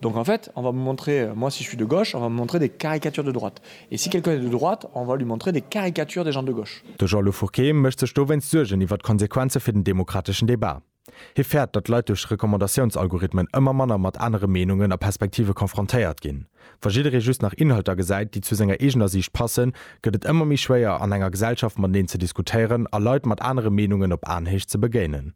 Donc en fait, on va me montrer, moi si je suis de gauche, on va me montrer des caricatures de droite. Et si quelqu'un est de droite, on va lui montrer des caricatures des gens de gauche. De Jean-Lou Fourquet mécht sech dowéinst Suergen iwwer d'Konsequenze fir den demokrateschen Debat. Hie fäert, datt Leit duerch Recommandatiounsalgorithmen ëmmer manner mat anere Meenungen a Perspektive confrontéiert ginn. Wa jidderee just nach Inhalter gesäit, déi zu senger eegener Siicht passen, gëtt et ëmmer méi schwéier, an enger Gesellschaft mateneen ze diskutéieren a Leit mat anere Meenungen op Aenhéicht ze begéinen.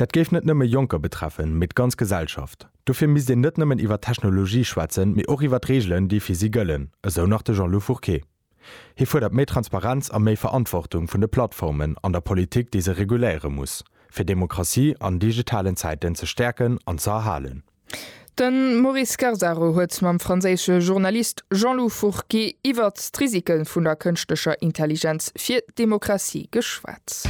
Dat géif net nëmme Jonker betreffen, mee d'ganz Gesellschaft. Dofir misst een net nëmmen iwwer d'Technologie schwätzen, mee och iwwer d'Reegelen, déi fir si gëllen, esou nach de Jean-Lou Fourqué. Hie fuerdert méi Transparenz a méi Verantwortung vun de Plattformen an der Politik, déi se reguléiere muss, fir Demokratie an digitalen Zäiten ze stäerken an ze erhalen. De Maurice Scarsaro huet mam franséische Journalist Jean-Lou Fourqué iwwert d'Risike vun der kënschtlecher Intelligenz fir d'Demokratie geschwat.